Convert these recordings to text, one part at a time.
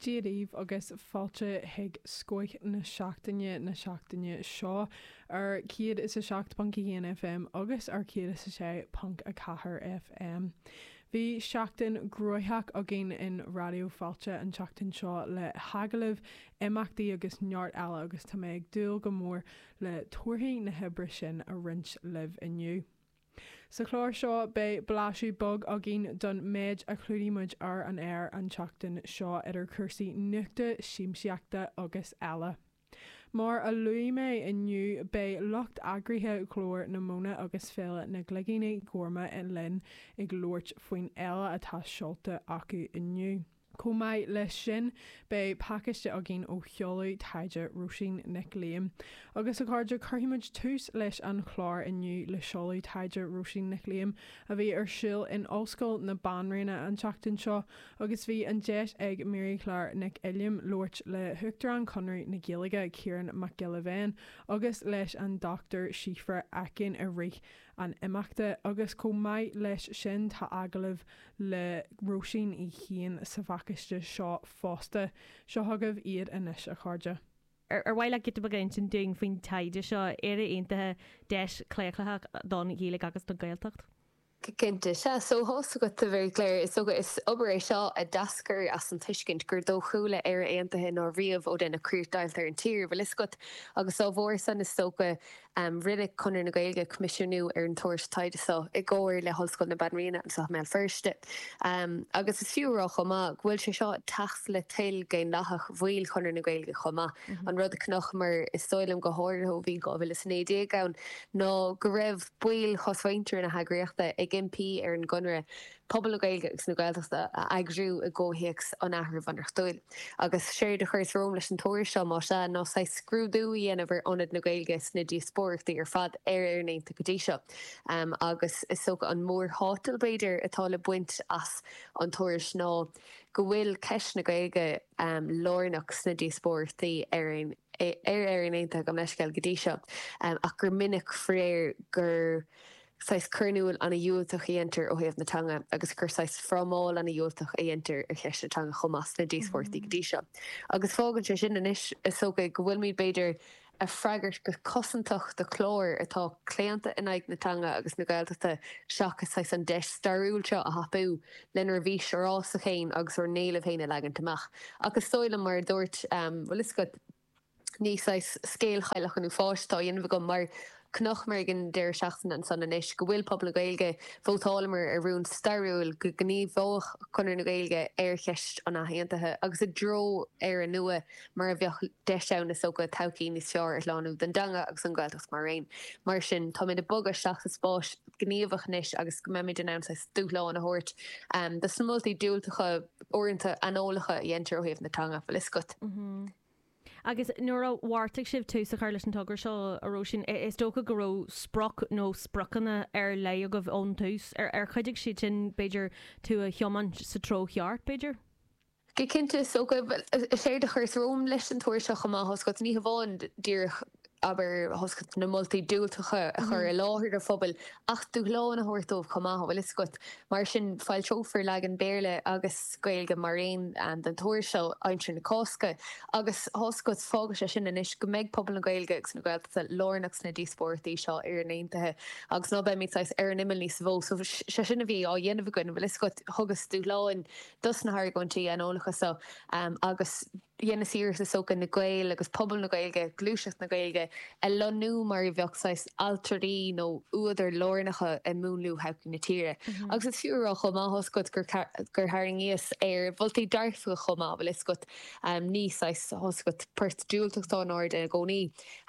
Dia daoibh agus fáilte chuig Scoth na Seachtaine na seachtaine seo ar 107.1 FM agus ar 106.4 FM. Bhí seachtain gnoitheach againn in Raidió Fáilte an tseachtain seo le hagallaimh, imeachtaí agus neart eile agus tá mé ag dúil go mór le torthaí na hoibre sin a roinnt libh inniu. Sa chlár seo beidh blaiseadh beag againn don méid a chlúdaigh muid ar an aer an tseachtain seo idir cúrsaí nuachta, siamsaíochta agus eile. Mar a luaigh mé inniu beidh lucht eagraithe Ghlór na Móna agus Féile na gCloigíní Gorma linn ag labhairt faoin fhéile atá seolta acu inniu. Chomh maith leis sin beidh pacáiste againn ó sheoladh taighde Róisín Nic Liam. Agus a chairde, cuirfidh muid tús leis an chlár inniu le seoladh taighde Róisín Nic Liam a bhí ar siúl in Ollscoil na Banríona an tseachtain seo agus bhí an deis ag Maryclare Nic Uilliam labhairt le hUachtarán Chonradh na Gaeilge, Ciarán Mac Giolla Bhéin agus leis an Dr Síobhra Aiken i rith an imeachta agus chomh maith leis sin tá agallamh le Róisín í féin sa phacáiste seo fosta. Seo chugaibh iad anois a chairde. Ar mhaith leat giota beag a insint dúinn faoin taighde seo, Éire Aontaithe, Deis Chlaochlaitheach don Ghaeilge agus don Ghaeltacht? Cinnte. Sea, so tá a fhios agat, a Mharyclare. Is dócha, is obair é seo a d'eascair as an tuiscint gur dóchúla Éire Aontaithe ná riamh ó deineadh críochdheighilt ar an tír. Bhfuil a fhios agat, agus dá bharr san, is dócha, Rinne Conradh na Gaeilge coimisiúnú ar an tuairisc taighde seo i gcomhar le hOllscoil na Banríona anseo i mBéal Feirste agus is fiú a rá chomh maith go bhfuil sé seo ag teacht le toil dhaonlathach bhaill Chonradh na Gaeilge chomh maith. An rud a chonacamar, is dóigh liom, go háirithe ó bhí 2019 ann ná go raibh baill chosmhuintir na heagraíochta ag impí ar an gConradh pobal na Gaeilge agus na Gaeltachta a eagrú i gcomhthéacs an athrú bhunreachtúil. Agus séard a chuireas romham leis an tuairisc seo, más ea, ná saghas scrúdú a dhéanamh ar ionad na Gaeilge sna díospóireachtaí ar fad ar Éirinn aontaithe go dtí seo. Agus is dócha an mórthátal, b'fhéidir, atá le baint as an tuairisc ná go bhfuil ceist na Gaeilge lárnach sna díospóireachtaí ar ar Éirinn aontaithe, gabh mo leithscéal, go dtí seo ach gur minic, faraor, gur. saghas cur in iúl ana-dhiúltach a dheintear ó thaobh na teanga agus gur saghas frámáil ana-dhiúltach a dheintear ar cheist na teanga chomh maith sna díospóireachtaí go dtí seo. Agus fágann sé sin anois is dócha go bhfuilimid b'fhéidir a' freagairt go cosantach do chlár atá claonta in aghaidh na teanga agus na Gaeltachta seachas saghas an deis stairiúil seo a thapú lenár bhfís fhorásach fhéin agus ár n-éilimh fhéin a leagaint amach. Ach is dóigh liom mar a dúirt, bhfuil a fhios agat. ní saghas scéal chailleach an uafáis atá á dhéanamh agam mar chonaiceamar ag an deireadh seachtaine ansan anois go bhfuil pobal na Gaeilge, vótálamar ar rún stairiúil go ngníomhódh Conradh na Gaeilge ar cheist an athaontaithe agus i dtreo Éire nua mar a bheadh deis ann is dócha todhchaí níos fearr a shlánú don dteanga agus don Ghaeltacht maraon. Mar sin táimid ag bogadh isteach sa spás. gníomhach anois agus go mbeimid in ann saghas dúshlán a thabhairt do na moltaí diúltacha, uaireanta aineolacha, a dhéantar ó thaobh na teanga, an bhfuil fhios agat. Agus nuair a bheartaigh sibh tús a chur leis an togra seo, a Róisín, is dócha go raibh sprioc nó spriocanna ar leith agaibh ón tús. Ar chuidigh siad sin, b'fhéidir, tú a thiomáint sa treo cheart, b'fhéidir? Go cinnte, is dócha. Is éard a chuireas romham leis an tuairisc seo chomh maith, tá's agat, ní hamháin díreach, abair, tá's agat na moltaí diúltacha a chur i láthair an phobail, ach dúshlán a thabhairt dóibh chomh maith, an bhfuil fhios agat. Mar sin, foilseofar leagan Béarla agus Gaeilge mar aon den tuairisc seo aimsir na Cásca. Agus tá's agat, fágann sé sin anois go mbeidh pobal na Gaeilge agus na Gaeltachta lárnach sna díospóireachtaí seo ar Éirinn aontaithe agus ná beimid saghas ar an imeall níos mó. So, sé sin a bhí á dhéanamh againn, an bhfuil fhios agat. Thugas dúshlán. dos na hargóintí aineolacha so agus dheineas iarracht is dócha na Gaeil agus pobal na Gaeilge, gluaiseacht na Gaeilge a lonnú mar a bheadh saghas ailtirí nó údair lárnacha i múnlú thodhchaí na tíre. Agus is fiú a rá chomh maith tá's agat gur tharraingíos ar mholtaí dearfacha chomh maith bhfuil fhios agat, ní saghas, tá's agat, port diúltach atá in airde i gcónaí.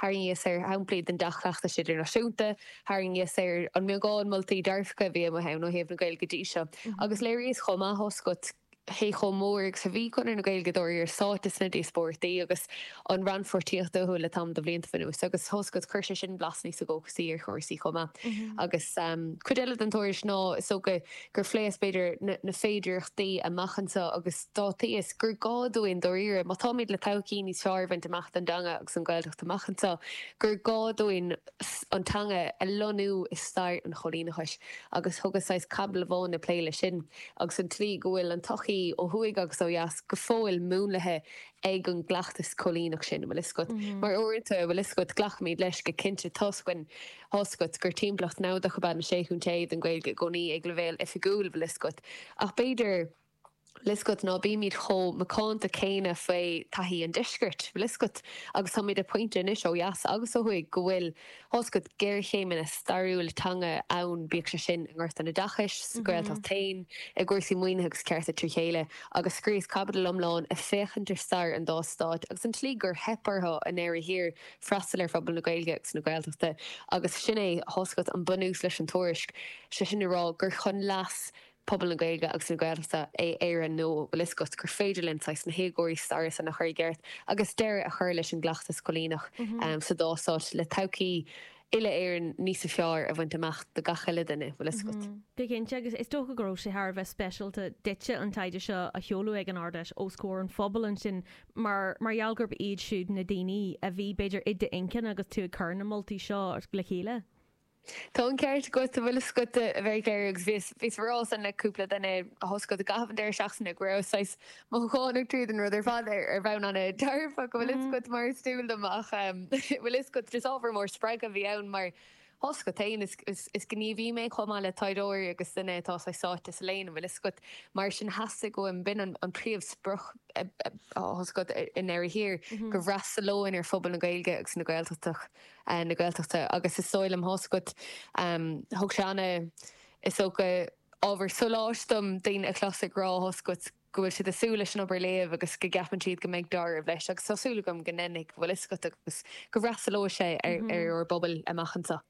Tharraingíos ar shamplaí den dea-chleachtas idirnáisiúnta, tharraingíos ar an mbeagán moltaí dearfacha a bhí amuigh ann ó thaobh na Gaeilge go dtí seo, agus léiríos chomh maith tá's agat cé chomh mór agus a bhí Conradh na Gaeilge dáiríre sáite sna díospóireachtaí agus an rannpháirtíocht acu le tamall de bhlianta anuas. Agus tá's agat chuir sé sin blas níos dóchasaí ar chúrsaí chomh maith. Agus cuid eile den tuairisc ná is dócha. gur phléas b'fhéidir na féidearthachtaí amach anseo agus d'áitíos gur gá dúinn dáiríre, má táimid le todhchaí níos fearr a bhaint amach don dteanga agus don Ghaeltacht amach anseo, gur gá dúinn an teanga a lonnú i stair an choilíneachais agus thugas saghas caibidil amháin ag plé leis sin agus an tslí go bhfuil an tsochaí ó thuaidh agus ó dheas go fóill múnlaithe ag an gcleachtas coilíneach sin. An bhfuil fhios agat? Mar uaireanta, an bhfuil fhios agat, glacaimid leis go cinnte, toisc an. Tá's agat gur timpeallacht naimhdeach ab ea na Sé Chontae don Ghaeilge i gcónaí ag leibhéal oifigiúil bhfuil fhios agat, ach b'fhéidir bhfuil fhios agat ná bímid chomh macánta céanna faoi taithí an deiscirt, bhfuil fhios agat, agus táimid ag pointe anois, ó dheas agus ó thuaidh, go bhfuil, tá's agat, géarchéimeanna stairiúla teanga ann, bíodh sé sin i ngort an oideachais, sa Ghaeltacht féin, i gcúrsaí maoinithe agus cearta trí chéile, agus scríobhas caibidil iomlán ag féachaint ar stair an dá stáit agus an tslí gur theip orthu i ndeireadh thiar freastal ar phobal na Gaeilge agus na Gaeltachta agus sin é, tá fhios agat, an bunús leis an tuairisc, sé sin le rá gur chun leas pobal na Gaeilge agus na Gaeltachta é Éire Nua, bhfuil fhios agat, gur féidir linn saghas na héagóirí staire san a chur i gceart agus deireadh a chur leis an gcleachtas coilíneach sa dá stát le todhchaí uile Éireann níosa fearr a bhaint amach do gach uile duine, bhfuil fhios agat. Go cinnte, agus is dócha go raibh sé thar a bheith speisialta duitse an taighde seo a sheoladh ag an Ard-Fheis os comhair an phobail ansin mar mar gheall gurb iad siúd na daoine a bhí, b'fhéidir, i d'intinn agus tú ag cur na moltaí seo le chéile? Tá an ceart agat, bhfuil fhios agat, very clear agus bhíos, bhíos á rá san le cúpla duine, tá fhios agat, i gcaitheamh an deireadh seachtaine go rabhas saghas mothúchánach tríd an rud ar fad ar, ar bhonn ana dearfach go bhfuil fhios agat mar is dual dom ach bhfuil fhios agat just ábhar mór spreagtha a bhí ann mar, fhios agat féin, is gníomhaí mé chomh maith le taighdeoir agus duine atá saghas sáite sa léann, an bhfuil fhios agat? Mar sin theastaigh uaim, b'in an príomh sprioc, fhios agat, i ndeireadh thiar, go bhfreastalóinn ar phobal na Gaeilge agus na Gaeltachta, na Gaeltachta agus is dóigh liom, fhios agat, thug sé ana, is dócha, ábhar sóláis dom daoine a chlos ag rá, fhios agat, go bhfuil siad ag súil leis an obair a léamh agus go gceapann siad go mbeidh dealramh leis agus tá súil agam go ndéanfaidh, bhfuil fhios agat, agus go bhfreastalóidh sé ar ár bpobail amach anseo.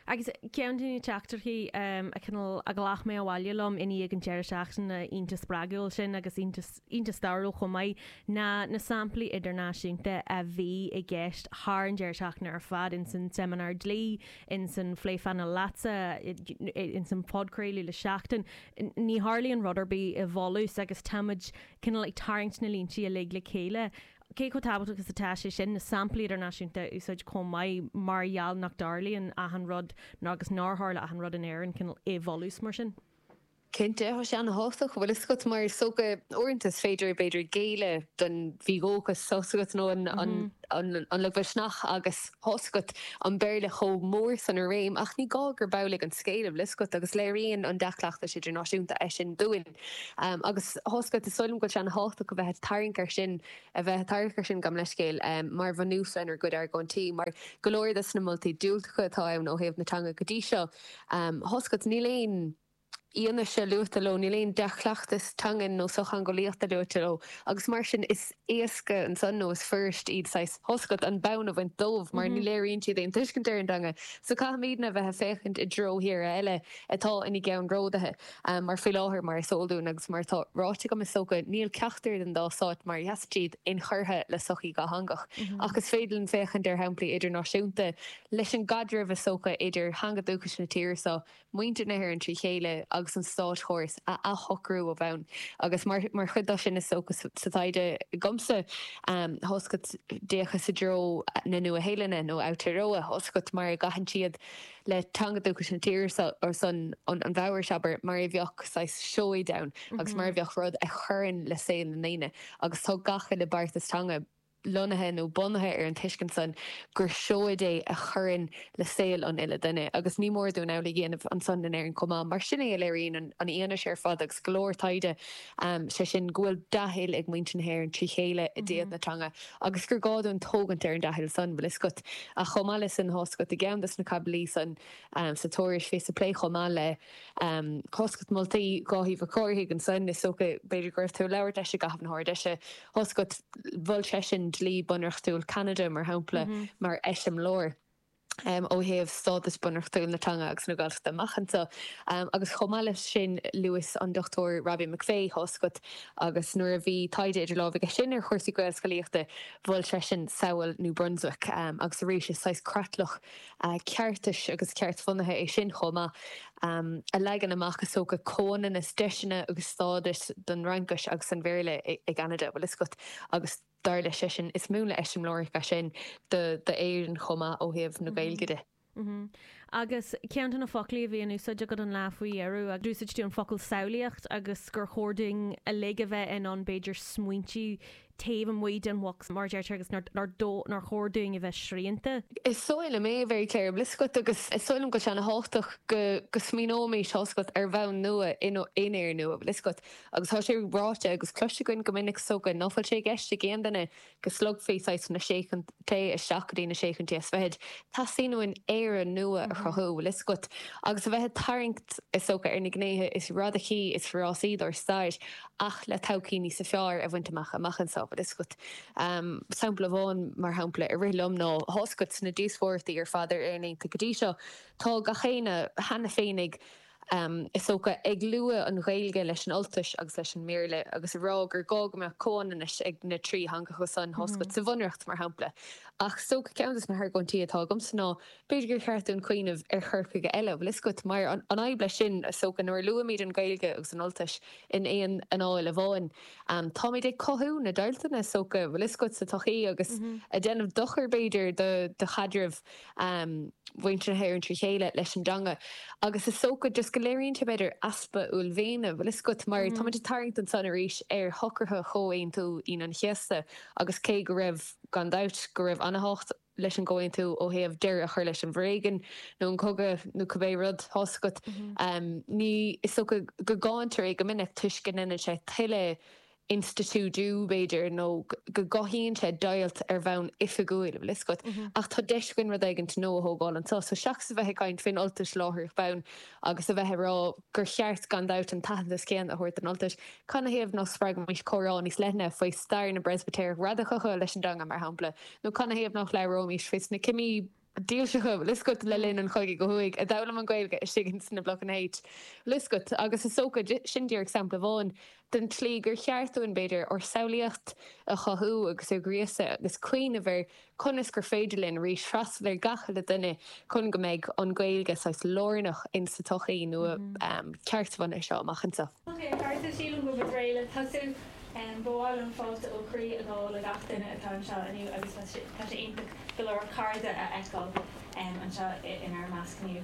Agus ceann de na teachtaireachtaí a cineál a ghlac mé abhaile liom i ndiaidh an deireadh seachtaine iontach spreagúil sin agus iontach, iontach stairiúil chomh maith ná na samplaí idirnáisiúnta a bhí i gceist thar an deireadh seachtaine ar fad, ins an seimineár dlí, ins an phlé phainéil leatsa, ins an phodchraoladh le Seachtain. Ní tharlaíonn rud ar bith i bhfolús agus táimid cineál ag tarraingt na líntí uilig le chéile. Cé chomh tábhachtach is atá sé sin? Na samplaí idirnáisiúnta a úsáid chomh maith mar gheall nach dtarlaíonn achan rud, nó agus nár tharla achan rud in Éirinn, cineál i bhfolús mar sin. Cinnte, tá sé ana-thábhachtach, bhfuil fhios agat mar is dócha uaireanta is féidir, b'fhéidir, géilleadh don mhídhóchas, tá fhios agat, nó an lagmhisneach agus. Tá fhios agat, an Béarla chomh mór san i réim ach ní gá gurb amhlaidh an scéal, bhfuil fhios agat, agus léiríonn an dea-chleachtas idirnáisiúnta é sin dúinn. Agus tá fhios agat, is dóigh liom go bhfuil sé ana thábhachtach a bheith ag tarraingt air sin, a bheith ag tarraingt air sin gan leithscéal, mar bhunús lenár gcuid argóintí, mar go leor de sna moltaí diúltacha atá ann ó thaobh na teanga go dtí seo. Tá fhios agat, níl aon. fhianaise luaite leo, níl aon dea-chleachtas teangan nó sochtheangeolaíochta luaite leo agus mar sin is éasca ansan nó is fuirist iad saghas, tá fhios agat, an bonn a bhaint dóibh mar ní léiríonn siad aon tuiscint ar an dteanga so caithfimidne a bheith a' féachaint i dtreo tíortha eile atá ina gceannródaithe mar faoi láthair mar is eol dúinn agus mar atá ráite agam is dócha níl ceachtar den dá stáit mar a sheasann siad inchurtha le sochaí dhátheangach ach is féidir linn féachaint ar shamplaí idirnáisiúnta leis an gcaidreamh is dócha idir theanga dúchais na tíre so muintir na hÉireann trí chéile agus an státchóras a athshocrú ó bhonn. Agus mar chuid de sin is dócha sa taighde agamsa, tá fhios agat, d'fhéachas i dtreo na Nua-Shéalainne, nó Aotearoa, tá fhios agat, mar a gcaitheann siad le teanga dúchais na tíre seo, ansan an Mhaorais, abair, mar a bheadh saghas seoid ann agus mar a bheadh rud a chuireann le saol na ndaoine. Agus tá gach uile beartas teanga. lonnaithe nó bunaithe ar an tuiscint san gur seoid é a chuireann le saol an uile dhuine agus ní mór dúinn amhlaidh a dhéanamh ansan in Éirinn chomh maith mar sin é a léiríonn an fhianaise ar fad agus go leor taighde, sé sin go bhfuil dea-thoil ag muintir na hÉireann trí chéile i dtaobh na teanga agus gur gá dúinn tógaint ar an dea-thoil san. Bhfuil fhios agat, ach chomh maith le sin, tá fhios agat, i gceann dos na caibidlí san sa Tuairisc, bhíos ag plé chomh maith le. tá fhios agat, moltaí Dháithí Mhic Cárthaigh ansin. Is dócha, b'fhéidir, go raibh tú ag labhairt leis i gcaitheamh na hArd Fheise. Tá fhios agat, mhol seisean dlí bunreachtúil Cheanada, mar shampla, mar eiseamláir ó thaobh stádas bunreachtúil na teanga agus na Gaeltachta amach anseo. Agus chomh maith leis sin, luas an Dr Robbie McVeigh, tá fhios agat, agus nuair a bhí taighde idir lámh aige sin ar chúrsaí Gaelscolaíochta, mhol seisean samhail New Brunswick. Agus arís, is saghas creatlach ceartais agus ceart-bhunaithe é sin chomh maith, a leagann amach is dócha comhionannas deiseanna agus stádais don Fhraincis agus an Bhéarla i gCeanada, bhfuil fhios agat agus dar leis seisean, is múnla eiseamláireach é sin do Éirinn chomh maith ó thaobh na Gaeilge de. Mh-mh. Agus ceann de na foclaí a bhí in úsáid agat an lá faoi dheireadh, a d'úsáid tú an focal samhlaíocht agus gur chóir dúinn uilig a bheith in ann b'fhéidir smaointiú taobh amuigh den bhocs mar a deirtear agus nár chóir dúinn a bheith srianta. Is dóigh liom é, a Mhary Claire, bhfuil fhios agat, agus is dóigh liom go bhfuil sé ana-thábhachtach go smaoineoimis, tá fhios agat, ar bhonn nua in Éirinn nua, bhfuil fhios agat, agus tá sé ráite agus cloiste againn go minic is dócha nach bhfuil sé i gceist ag aon duine go slogfaí saghas na sé chontae isteach go dtí na sé chontae is fichead. Teastaíonn uainn Éire nua a chruthú, bhfuil fhios agat, agus a bheith ag tarraingt is dócha ar na gnéithe is radacaí is forásaí dár stair ach le todhchaí níos fearr a bhaint amach, amach anseo. Bhfuil fhios agat, sampla amháin mar shampla a rith liom ná tá fhios agat, sna díospóireachtaí ar fad ar Éirinn aontaithe go dtí seo tá gach éinne cheana féin ag is dócha ag lua an Ghaeilge leis an Ultais agus leis an mBéarla agus ag rá gur gá go mbeadh comhionannas ag na trí theanga ansan, tá fhios agat, sa Bhunreacht mar shampla ach is dócha ceann de na hargóintí atá agamsa ná B'fhéidir gur cheart dúinn cuimhneamh ar chur chuige eile, bhfuil fhios agat, mar an fhadhb leis sin, is dócha, nuair a luaimid an Ghaeilge agus an Ultais in aon anáil amháin, táimid ag cothú na deighilteanna, is dócha, bhfuil fhios agat, sa tsochaí agus ag déanamh dochair, b'fhéidir, do chaidreamh mhuintir na hÉireann trí chéile leis an dteanga. Agus is dócha, just go léiríonn sé, b'fhéidir, easpa uaillmhéine, bhfuil fhios agat, mar táimid ag tarraingt ansan arís ar shocruithe Chomhaontú Aoine an Chéasta agus cé go raibh, gan dabht, go raibh ana-thábhacht, leis an gcomhaontú ó thaobh deireadh a chur leis an bhforéigean nó an cogadh nó cibé rud, tá a fhios agat. Ní is dócha go gcáintear é go minic toisc go ndeineann sé tuilleadh institiúidiú, b'fhéidir, nó go gcothaíonn sé deighilt ar bhonn oifigiúil, an bhfuil a fhios agat. Ach tá deis againn rud éigint nua a thógáil anseo. So seachas a bheith ag caint faoin Ultais láithreach bonn, agus a bheith ag rá gur cheart gan dabht an t-aitheantas céanna a thabhairt don Ultais, cad 'na thaobh nach spreagfaimís comhrá níos leithne faoi stair na bPreispitéireach Radacacha leis an dteanga, mar shampla, nó cad 'na thaobh nach labhróimís faoi sna cimí dílseacha, an bhfuil a fhios agat, le linn an chogaidh ó thuaidh, a d'fhoghlaim an Ghaeilge istigh ins na blocanna H, an bhfuil a fhios agat, agus is dócha, sin díreach sampla amháin, den tslí gur cheart dúinn, b'fhéidir, ár samhlaíocht a chothú agus a ghríosadh agus cuimhneamh ar conas gur féidir linn arís freastal ar gach uile dhuine chun go mbeidh an Ghaeilge saghas lárnach in sa tsochaí nua ceart-bhunaithe seo amach anseo. Ok, a chairde, sílim go bhfuil réidh le tosú. Ba mhaith liom fáilte ó chroí a ghabháil le gach duine atá anseo inniu agus tá sé iontach go leor cairde a fheiceáil anseo inár measc inniu.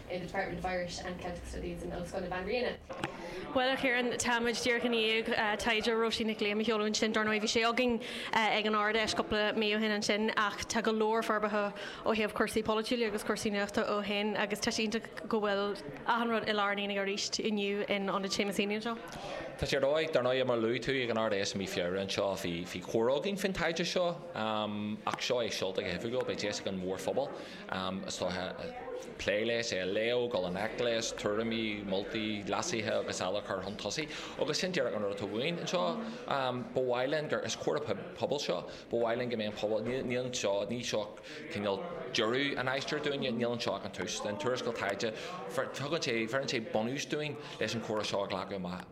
i Department of Irish and Celtic Studies in Ollscoil na Banríona. Bhuel, a Chiaráin, táimid díreach i ndiaidh taighde Róisín Nic Liam a sheoladh ansin. Dar ndóigh, bhí sé againn ag an Ard-Fheis cúpla mí ó shin ansin ach tá go leor forbartha ó thaobh cúrsaí polaitiúla agus cúrsaí nuachta ó shin agus tá sé iontach go bhfuil achan rud i lár an aonaigh arís inniu in Ionad Seamus Heaney anseo. Tá sé réidh. Dar ndóigh, mar a luaigh tú, ag an Ard-Fheis i mí Feabhra anseo bhí comhrá againn faoin taighde seo ach seo é seolta go hoifigiúil. Beidh deis ag an mhórphobal anois a bheith ag plé leis, é a léamh, dul i ngleic leis, tuairimí, moltaí, leasuithe agus eile a chur chun tosaigh agus sin díreach an rud atá uainn anseo. Ba mhaith linn gur, is comhrá pobail seo, ba mhaith linn go mbeidh an pobal, níl, níl anseo, ní seo cineál deireadh an aistir dúinne, níl anseo ach an tús. An tuarascáil taighde, tugann sé, bheireann sé bunús dúinn leis an chomhrá seo a ghlacadh amach.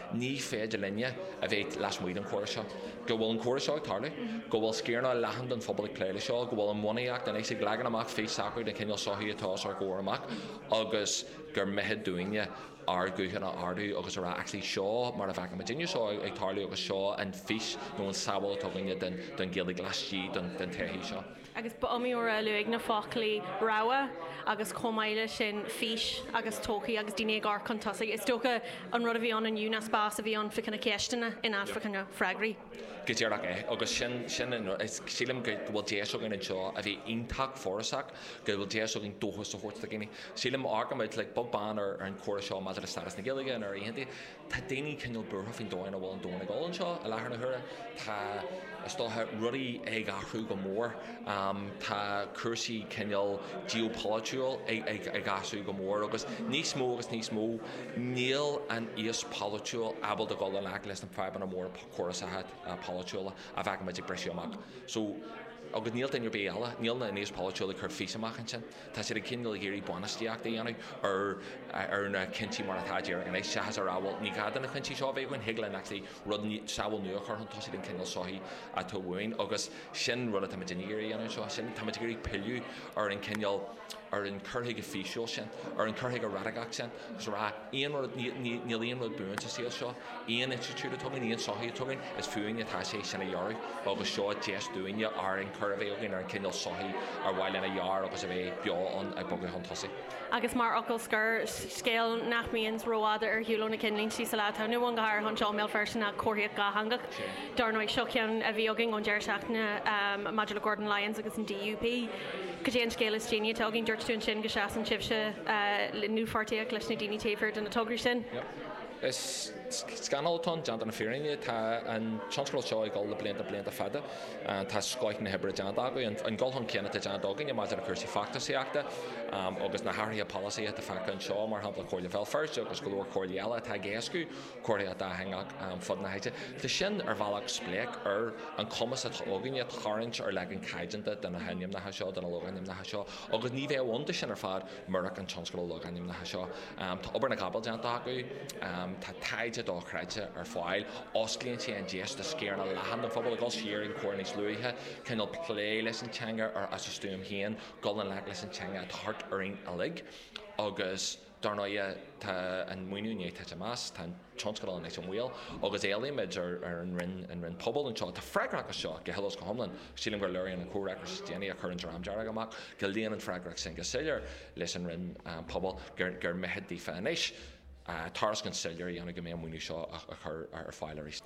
Ní féidir linne a bheith lasmuigh den chomhrá seo. Go bhfuil an comhrá seo ag tarlú, go bhfuil sciaranna leathan den phobal ag plé leis seo, go bhfuil an bhunaíocht anois ag leagan amach fís socraithe den chineál sochaí atá os ár gcomhair amach agus gur mithid dúinne ár guthanna a ardú agus a rá actually seo mar a fheiceann muidinne seo ag tarlú agus seo an fís nó an tsamhail atá againne den Ghaeilge laistigh den tsochaí seo. agus ba iomaí uair a luadh na foclaí 'rogha' agus chomh maith leis sin 'fís' agus 'todhchaí' agus daoine ag amharc chun tosaigh. Is dócha an rud a bhí ann inniu ná spás a bhí ann fá choinne ceisteanna in áit fá choinne freagraí. Go díreach é, agus sin sin an rud is, sílim go bhfuil deis againn anseo a bheith iontach forásach, go bhfuil deis againn dóchas a thabhairt do dhaoine. Sílim, amharcann muid, like, beag beann ar an chomhrá seo maidir le stádas na Gaeilge in Éirinn aontaithe, Tá daoine cineál buartha faoin dóigh ina bhfuil an domhan ag dul anseo i láthair na huaire. Tá, is dócha, rudaí ag athrú go mór. Tá cúrsaí cineál geopolaitiúil ag athrú go mór agus níos mó agus níos mó níl an aos polaitiúil ábalta dul in aice leis na fadhbanna móra córasacha polaitiúla a fheicimid ag briseadh amach. So, agus níl duine ar bith eile, níl an aos polaitiúil ag cur fís amach ansin. Tá siad ag cineál ag iarraidh bainistíocht a dhéanamh ar na cinntí mar atá, díreach anois, seachas a rá, bhuel, ní gá do na cinntí seo a bheith againn, thig linn actually rud, samhail nua a chur chun tosaigh den chineál sochaí atá uainn agus sin rud atá muid ag iarraidh a dhéanamh anseo, sin, táimid ag iarraidh pilleadh ar an chineál, ar an chur chuige físiúil sin, ar an chur chuige raidiceach sin. Is a rá, aon rud, níl aon rud buan sa saol seo. Aon institiúid atá againn, aon sochaí atá againn, is fúinne atá sé sin a dhearadh agus seo deis dúinne ár gcomhrá a bheith againn ar an chineál sochaí ar mhaith linn a dhearadh agus a bheith beo ann ag bogadh chun tosaigh. Agus mar fhocal scoir, scéal nach mbíonn rófhada ar shiúl ó na ceannlínte sa lá atá inniu ann, go háirithe anseo i mBéal Feirste, ná comharthaíocht dhátheangach. Dar ndóigh, seo ceann a bhí againn ón deireadh seachtaine maidir le Gordon Lyons agus an DUP. Cad é an scéal is déanaí atá againn? Dúirt tú inniu go seasann sibhse i ndlúthpháirtíocht leis na daoine taobh thiar de na tograí sin. Is scannal atá ann, déanta na fírinne. Tá an tionscadal seo ag dul le blianta, blianta fada. Tá scoith na hoibre déanta acu. An dul chun cinn atá déanta againne maidir le cúrsaí feachtasaíochta agus na hathruithe polasaí atá feicthe anseo, mar shampla Comhairle Bhéal Feirste agus go leor comhairlí eile atá ag éascú, comharthaíocht dhátheangach ar fud na háite. Tá sin ar bhealach spleách ar an chumas atá againne tarraingt ar leagan caighdeánta de na hainmneacha seo, de na logainmneacha seo, agus ní bheadh ann do sin ar fad murach an tionscadal logainmneacha seo. Tá obair na gcapall déanta acu, tá taighde dochreidte ar fáil, osclaíonn sé an deis do sciaranna leathan den phobal a dhul siar ar an chomhrá níos luaithe, cineál plé leis an teanga ar, as a stuaim féin, dul i ngleic leis an teanga atá thart orainn uilig agus. Dar ndóigh, tá an maoiniú i ndiaidh titim as, tá an tionscadal anois i mbaol agus éilímid ar an Roinn Pobal anseo atá freagrach as seo go huile is go hiomlán, sílim gur léiríonn an comhfhreagras is déanaí a chuir an Dream Dearg amach go luíonn an freagracht sin go soiléir leis an Roinn Pobal, gur mithid daofa anois tairiscint soiléir a dhéanamh go mbeidh an maoiniú seo á chur ar fáil arís.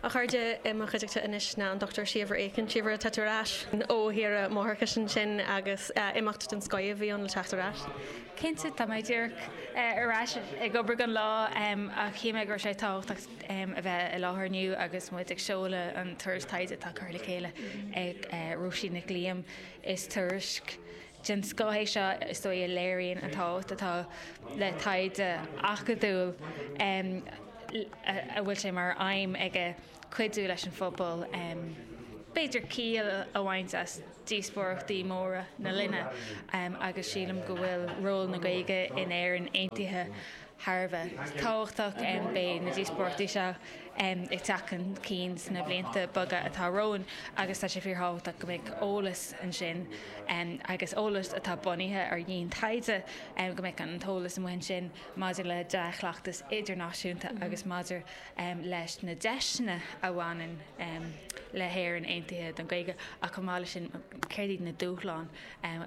A chairde, i mo chuideachta anois ná an Dr. Síobhra Aiken. Síobhra, tá tú ar ais ó shaoire máithreachais ansin agus imeacht den scoith a bhí ann le teacht ar ais. Cinnte, tá mé díreach ar ais ag obair inniu don lá ach shíl mé go raibh sé tábhachtach a bheith i láthair inniu agus muid ag seoladh an tuairisc taighde atá curtha le chéile ag Róisín Nic Liam. Is tuairisc den scoth é seo is dóigh a léiríonn an tábhacht atá le taighde acadúil a bhfuil sé mar aidhm aige, cuidiú leis an phobal b'fhéidir ciall a bhaint as díospóireachtaí móra na linne agus sílim go bhfuil ról na Gaeilge in Éirinn Aontaithe thar a bheith tábhachtach. Beidh na díospóireachtaí seo ag teacht chun cinn sna blianta beaga atá romhainn agus tá sé fíorthábhachtach go mbeadh eolas ansin agus eolas atá bunaithe ar dhiantaighde, go mbeadh an t-eolas amuigh ansin maidir le dea-chleachtas idirnáisiúnta agus maidir leis na deiseanna a bhaineann le hÉirinn Aontaithe don Ghaeilge ach chomh maith leis sin céard iad na dúshláin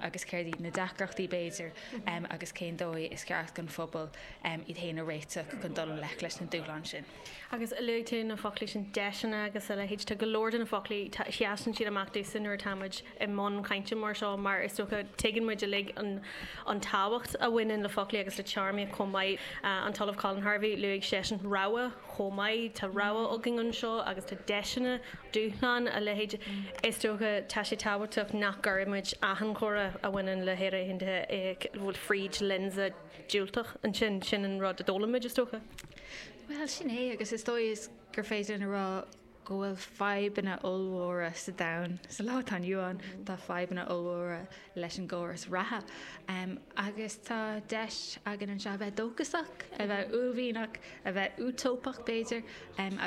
agus céard iad na deacrachtaí b'fhéidir agus cén dóigh is ceart don phobal iad féin a réiteach chun dul i ngleic leis na dúshláin sin. Agus luaigh tú na foclaí sin, deiseanna agus a leithéid. Tá go leor de na foclaí, seasann siad amach domhsa nuair atáimid i mbun cainte mar seo mar is dócha tuigeann muid uilig an tábhacht a bhaineann le foclaí agus le téarmaíocht chomh maith. An tOllamh Colin Harvey, luaigh seisean rogha chomh maith. Tá rogha againn anseo agus tá deiseanna, dúshláin, a leithéid. Is dócha tá sé tábhachtach nach gcuirfidh muid achan chomhrá a bhaineann le hÉire Aontaithe fríd lionsa diúltach ansin. Sin an rud a d'fhoghlaim muid is dócha. Bhuel, sin é agus is dóigh is gur féidir linn a rá, go bhfuil fadhbanna ollmhóra sa domhan sa lá atá inniu ann, tá fadhbanna ollmhóra leis an gcóras reatha agus tá deis againn anseo a bheith dóchasach, a bheith uaillmhianach, a bheith útóipeach b'fhéidir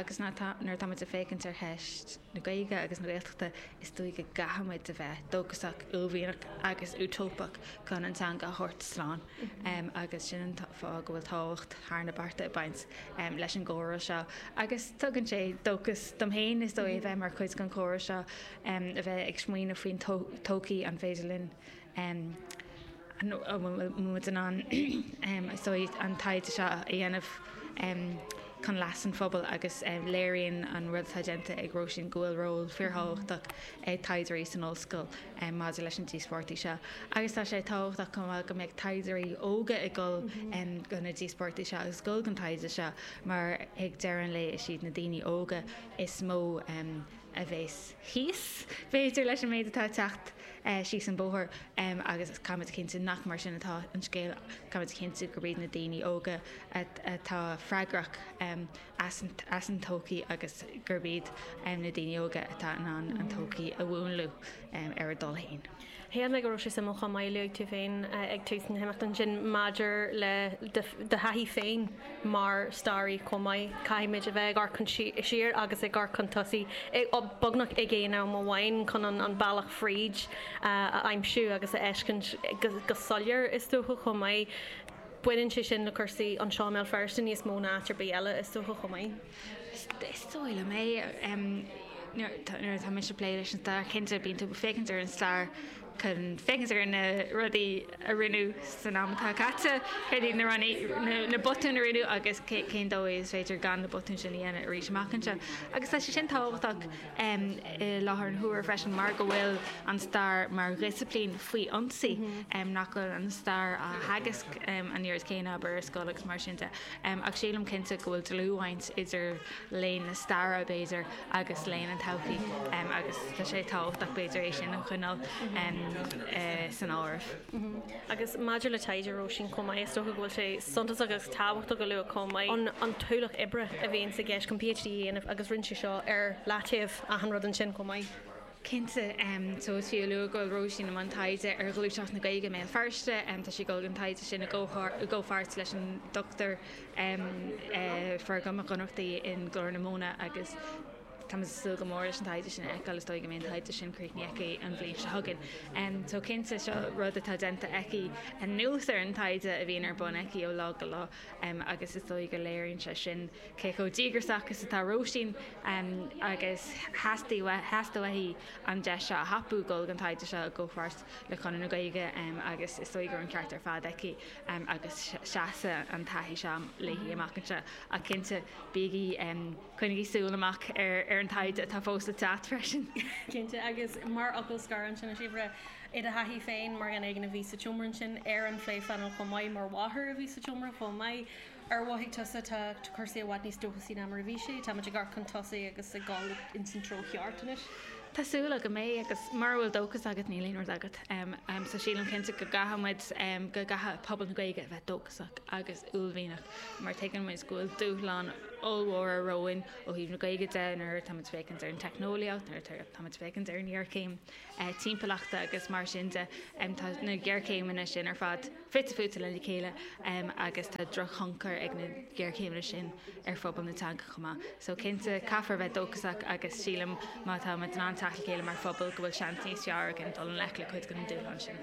agus nuair atá muid ag féachaint ar cheist na Gaeilge agus na Gaeltachta, is dóigh go gcaithfidh muid a bheith dóchasach, uaillmhianach agus útóipeach chun an teanga a thabhairt slán. agus sin an fáth go bhfuil tábhacht thar na bearta ag baint leis an gcomhrá seo agus tugann sé dóchas dom féin is dóigh a bheith mar chuid den chomhrá seo a bheith ag smaoineamh faoin todhchaí an féidir linn an bhfuil muid in ann is dóigh an taighde seo a dhéanamh chun leas an phobail agus léiríonn an rud atá déanta ag Róisín go bhfuil ról fíorthábhachtach ag taighdeoirí san ollscoil. maidir leis na díospóireachtaí seo agus tá sé tábhachtach chomh maith go mbeadh taighdeoirí óga ag dul do na díospóireachtaí seo agus dul don taighde seo mar ag deireadh an lae is iad na daoine óga is mó a bhéas thíos b'fhéidir leis an méid atá ag teacht síos an bóthar agus caithfimid a chinntiú nach mar sin atá an scéal, caithfimid a chinntiú gurb iad na daoine óga atá freagrach. as an todhchaí agus gurb iad na daoine óga atá in ann an todhchaí a mhúnlú ar a dtoil féin. Shíl mé go raibh sé suimiúil chomh maith luaigh tú féin ag tús na himeachta ansin maidir le do thaithí féin mar staraí chomh maith. Caithfimid a bheith ag amharc siar agus ag amharc chun tosaigh beagnach ag aon am amháin chun an bealach fríd a aimsiú agus a fheiscint go soiléir is dócha chomh maith. Baineann sé sin le cúrsaí anseo i mBéal Feirste níos mó ná áit ar bith eile, is dócha, chomh maith. Is dócha é. Nuair atá mise ag plé leis an stair, cinnte, bíonn tú ag féachaint ar an stair chun féachaint ar na rudaí a rinneadh san am atá caite, céard iad na rudaí, na botúin a rinneadh agus cén dóigh is féidir gan na botúin sin a dhéanamh arís amach anseo. Agus tá sé sin tábhachtach. i láthair an huaire freisin mar go bhfuil an stair mar dhisciplín faoi ionsaí, nach bhfuil an stair á theagasc an oiread céanna, abair, ar scoil agus mar sin de. Ach sílim cinnte go bhfuil dlúthbhaint idir léann na staire, b'fhéidir, agus léann an todhchaí agus tá sé tábhachtach, b'fhéidir, é sin a choinneáil san áireamh. Agus maidir le taighde Róisín chomh maith, is dócha go bhfuil sé suntasach agus tábhachtach a lua chomh maith an t-ualach oibre a bhíonn sa gceist chun PhD a dhéanamh agus rinne sí seo ar leataobh achan rud ansin chomh maith. Cinnte, tá sé fiú a lua go bhfuil Róisín i mbun taighde ar ghluaiseacht na Gaeilge i mBéal Feirste. Tá sí ag gabháil don taighde sin i gcomhpháirt leis an Dr Feargal Mac Ionnrachtaigh i nGlór na Móna agus. Tá muid ag súil go mór leis an taighde sin a fheiceáil, is dóigh go mbeidh an taighde sin críochnaithe aici an bhliain seo chugainn. Só cinnte, seo rud atá déanta aici anuas ar an taighde a bhíonn ar bun aici ó lá go lá agus is dóigh go léiríonn sé sin cé chomh díograsach is atá Róisín agus theastaigh uaithi an deis seo a thapú dul i mbun an taighde seo i gcomhpháirt le Conradh na Gaeilge agus is dóigh go raibh an ceart ar fad aici agus seasfaidh an taithí seo léi amach anseo ach cinnte, bígí. Coinnigí súil amach ar ar an taighde atá fós le teacht freisin. Cinnte. Agus mar fhocal scoir ansin, a Shíobhra, i do thaithí féin, mar dhuine eicínt a bhí sa tseomra ansin ar an phléphainéal chomh maith, mar mháthair a bhí sa tseomra chomh maith, ar mhothaigh tusa, tá cúrsaí i bhfad níos dóchasaí ná mar a bhí sé, táimid ag amharc chun tosaigh agus ag dul ins an treo cheart anois? Tá súil agam go mbeidh agus mura bhfuil dóchas agat níl aon rud agat. So sílim cinnte go gcaithfimid, go gcaithfidh pobal na Gaeilge a bheith dóchasach agus. uaillmhianach mar tuigeann muid go bhfuil dúshláin ollmhóra romhainn ó thaobh na Gaeilge de, nuair atá muid ag féachaint ar an teicneolaíocht, nuair atá muid ag féachaint ar an ghéarchéim timpeallachta agus mar sin de. Tá na géarchéimeanna sin ar fad fite fuaite lena chéile agus tá drochthionchar ag na géarchéimeanna sin ar phobal na teanga chomh maith. So cinnte, caithfear a bheith dóchasach agus sílim má tá muid in ann teacht le chéile mar phobal go bhfuil seans níos fearr againn dul i ngleic le cuid de na dúshláin sin.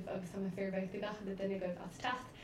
Tá an Ghaeilge ag teastáil ó gach duine agaibh. Tá muid ag tnúth le bheith ag plé leis an gceist seo.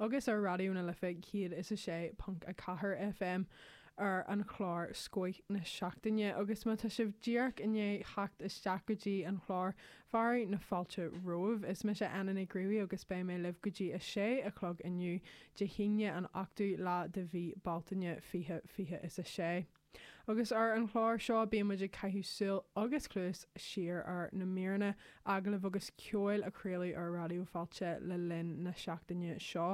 agus ar Raidió na Life 106.4 FM ar an chlár Scoth na Seachtaine agus má tá sibh díreach i ndiaidh theacht isteach go dtí an clár, fearadh na fáilte romhaibh. Is mise Anna Nic Ruairí agus beidh mé libh go dtí a sé a chlog inniu, Dé hAoine, an 8ú lá de mhí Bealtaine, fiche fiche is a sé. Agus ar an chlár seo bíonn muid ag caitheamh súil agus cluas siar ar na míreanna agallamh agus ceoil a craoladh ar Raidió Fáilte le linn na seachtaine seo.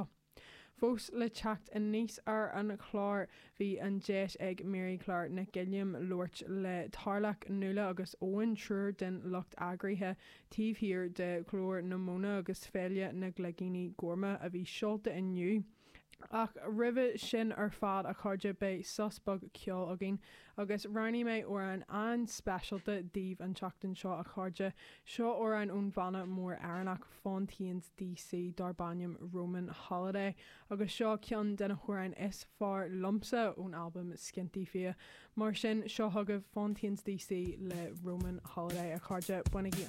Fós le teacht aníos ar an chlár, bhí an deis ag Mary Claire Nic Uilliam labhairt le Tarlach, Nuala agus Eoin, triúr den lucht eagraithe taobh thiar de Ghlór na Móna agus Féile na gCloigíní Gorma a bhí seolta inniu. Ach roimhe sin ar fad a chairde beidh sos beag ceoil againn agus roghnaigh mé amhrán an-speisialta daoibh an tseachtain seo a chairde. Seo amhrán ón bhanna mór Éireannach Fontaines D.C. darb ainm Roman Holiday agus seo ceann de na hamhráin is fearr liomsa ón albam Skinty Fia. Mar sin, seo chugaibh Fontaines D.C. le Roman Holiday a chairde, bainigí an.